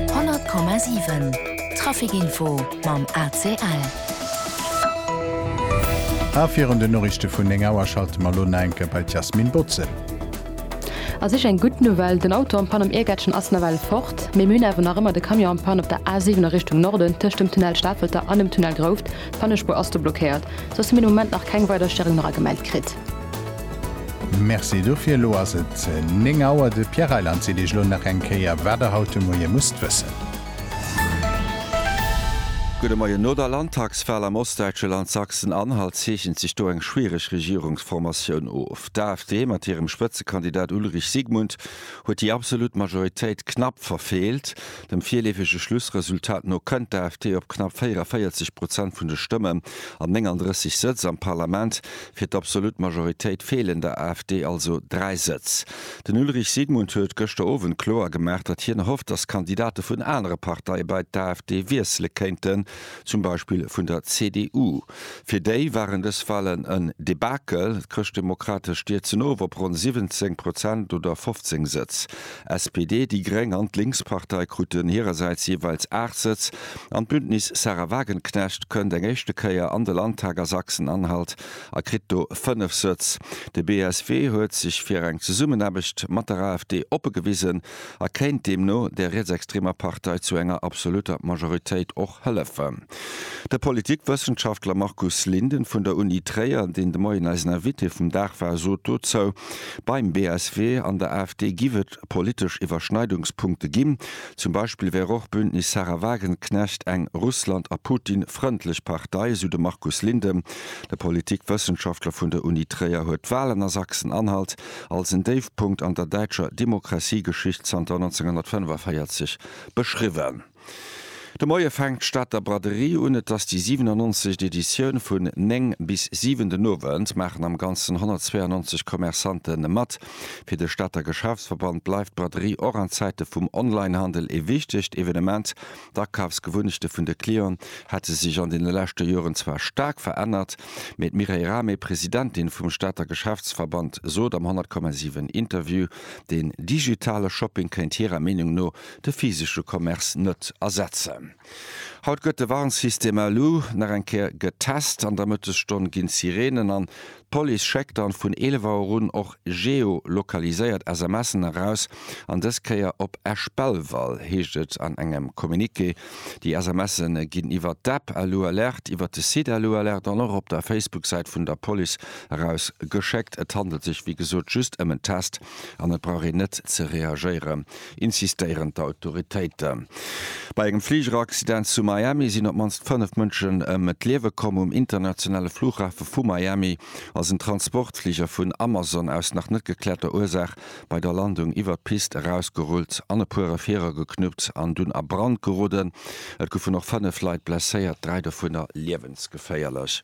100,7 Trafic Info mam ACL. A virun den Noriichte vun 9 Auer schalte mer elo na enke bei d'Yasmine Botze. A sech eng gutt Nouvelle, den Auto am Pann am Iergättchen ass nawell fort, mee mir hunn awer nach ëmmer de Camion am Pann op der A 7 a Richtung Norden tëscht dem Tunnel Stafelter an dem Tunnel Grouft. D'Pannespuer ass do blockéiert, soss hu mir de Moment nach keng weider Stëringneragemellt kritt. Merci dofir. Elo ass et 9 Auer. De Pierre Reyland seet Iech elo nach eng Kéier, wat Der haut de Moie musst wëssen. Gudde Moien. No der Landtagswal am ostdäitsche Land Sachsen-Anhalt zeechent sech do eng schwiereg Regierungsformatioun of. D'AfD mat hirem Spëtzekandidat Ulrich Sigmund huet déi absolut Majoritéit knapp verfeelt. Dem virleefege Schlussresultat no kënnt d'AfD op knapp 44 Prozent vun de Stëmmen an 39 Sëtz am Parlament. Fir d'absolut Majoritéit feelen der AfD also dräi Sëtz. Den Ulrich Sigmund huet gëschter Owend kloer gemaach, datt hien erhofft, datt Kandidate vun anere Parteie bei d'AfD wiessele kéinten, zum Beispill vun der CDU. Fir déi waren dës Walen en Debakel. D'Chrëschtdemokratesch stierzen of op ronn 17 Prozent oder 15 Sëtz. SPD, déi gréng an d'Linkspartei kruten hirersäits jeeweils 8 Sëtz an d'Bündnis Sahra Wagenknecht kënnt eng éischte Kéier an de Landtag a Sachsen-Anhalt a kritt do 5 Sëtz. De BSW huet sech fir eng Zesummenaarbecht mat der AfD oppe gewisen a kéint deemno der rietsextremer Partei zu enger absolutter Majoritéit och hëllefen. De Politikwëssenschaftler Markus Linden vun der Uni Tréier, deen de Moien eisen Invité vum Dag war, sot dozou, Beim BSW an der AfD giff et politesch Iwwerschneidungspunkte ginn. Zum Beispill wär och Bündnis Sahra Wagenknecht eng Russland a Putin frëndlech Partei, esou de Markus Linden. De Politikwëssenschaftler vun der Uni Tréier huet d'Walen a Sachsen-Anhalt als en Déifpunkt an der däitscher Demokratiegeschicht zanter 1945 beschriwwen. De Moie fänkt d'Stater Braderie un. Et ass déi 97. Editioun. Vun 9 bis 7 den Owend maachen am Ganzen 192 Commerçante mat. Fir de Stater Geschäftsverband bleift d'Braderie och an Zäite vum Onlinehandel ee wichtegt Evenement. D'Akafsgewunnechte vun de Clienten hätte sech an deene leschte Joren zwar staark verännert, mee d'Mireille Rahmé, Presidentin vum Stater Geschäftsverband, sot am 100,7 Interview, den digitale Shopping kéint hirer Meenung no de physesche Commerce net ersetzen. Haut gëtt de Warnsystem Alu nach eng Kéier getest. An der Mëttesstonn ginn d'Sireenen an. D'Police schéckt dann vun 11 Auer un och geolokaliséiert SMSen eraus. An dës Kéier op Esch-Belval, heescht et an engem Communiqué. Déi SMSe ginn iwwert d'App Alu Alert, iwwert de Site Alu Alert an och op der Facebook-Säit vun der Police eraus geschéckt. Et handelt sech wéi gesot just ëm en Test. An et brauch een net ze reagéieren, insistéieren d'Autoritéiten. Bei engem Fligeraccident zu Miami sinn op d'mannst fënnef Mënschen ëm d'Liewe komm. Um internationale Flughafe vu Miami ass en Transportfliger vun Amazon aus nach net geklärter Ursaach bei der Landung iwwer d'Pist erausgerullt an e puer Refierer geknuppt an dunn a Brand geroden. Et goufen och fënnef Leit blesséiert, dräi dovunner liewensgeféierlech.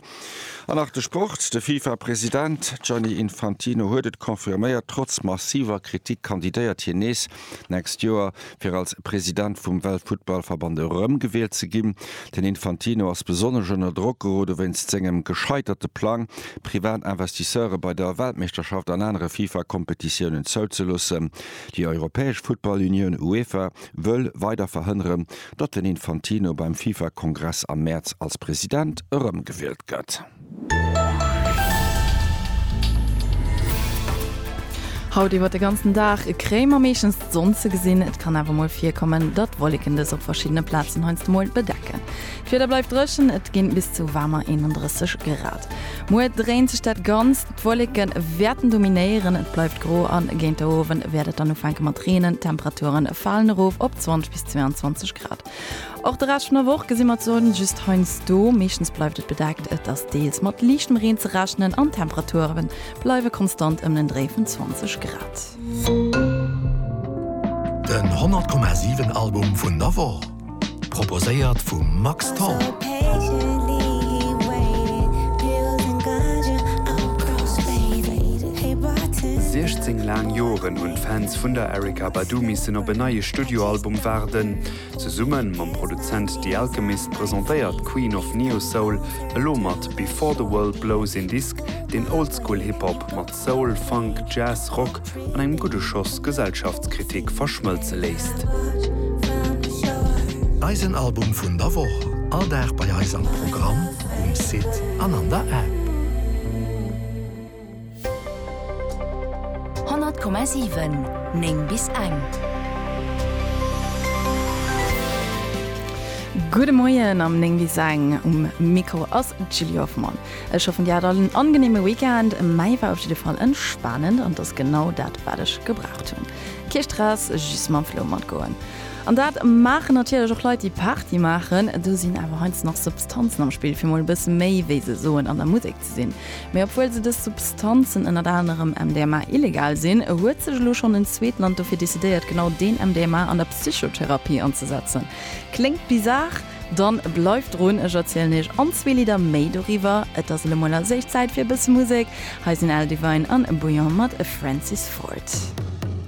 An nach de Sport, De Fifa-President Gianni Infantino huet et confirméiert, trotz massiver Kritik kandidéiert hien nees d'nächst Joer, fir als President vum Weltfuttballverband erëmgewielt ze ginn. Den Infantino ass besonnesch ënner Drock gerode wéinst sengem gescheiterte Plang, privat Investisseure bei der Weltmeeschterschaft an anere Fifa-Kompetitiounen zouzeloossen. Déi europäesch Futtball-Unioun UEFA wëll weider verhënneren, datt den Infantino beim FIFA-Kongress am Mäerz als President erëmgewielt gëtt. Haut iwwer de ganzen Dag Kréim a meeschtens d'Sonn ze gesinn. Et kann awer mol virkommen, datt Wolleken dës op verschiddene Plazen heiansdo mol bedecken. D'Wieder bleift dréchen, et ginn bis zu waarmer 31 Grad. Muer dréint sech dat Ganzt, d'Wolleke wäerten dominéieren, et bleift gro an géint de Owend wäert et dann ufänke mat reenen. D'Temperature falen erof op 20 22 Grad. Och de Rescht vun der Woch gesi mer d'Sonn just heiansdo, meeschtens bleift et bedeckt. Et ass deels mat liichtem Reen ze rechnen an d'Temperature bleiwe konstant ëm den Dréi vun 20 Grad. Den 100,7 Album vun der Woch, proposéiert vum Max Tholl. Siechzéng laang Joren hunn d'Fans vun der Erykah Badu missen op en neie. Studioalbum waarden. Zesumme mam Produzent The Alchemist presentéiert d'Queen of Neo-Soul elo mat Before the World Blows een Disk, deen Oldschool Hip Hop mat Soul, Funk, Jazz, Rock an engem gudde Schoss Gesellschaftskritik verschmëlze léisst. Eisen Album vun der Woch, all Dag bei eis am Programm, um Site an an der App. 100,7 9 bis eng. Gudde Moien am 9 bis eng, um Mikro ass d'Julie Hoffmann. Ech hoffen dir hat all en angeneeme Weekend, mäi war op jidde Fall entspanend an t'ass genau dat wat ech gebraucht hunn. Kee Stress, just mam Flow matgoen. An dat maachen natierlech och Leit déi Party maachen, do sinn awer heiansdo nach Substanzen am Spill fir mol e bësse méi, wéi se soen, an der Musek ze sinn. Mee obwuel se dës Substanzen, ënnert anerem MDMA, illegal sinn, huet sech elo schonn en zweet Land dofir decidéiert, genau deen MDMA an der Psychotherapie anzesetzen. Kléngt bizar? Dann bleift drun, ech erzielen iech an zwee Lidder méi doriwwer. Et ass elo mol als éischt Zäit fir e bësse Musek. Hei sinn L. Devine an Bouillon mat Francis Ford.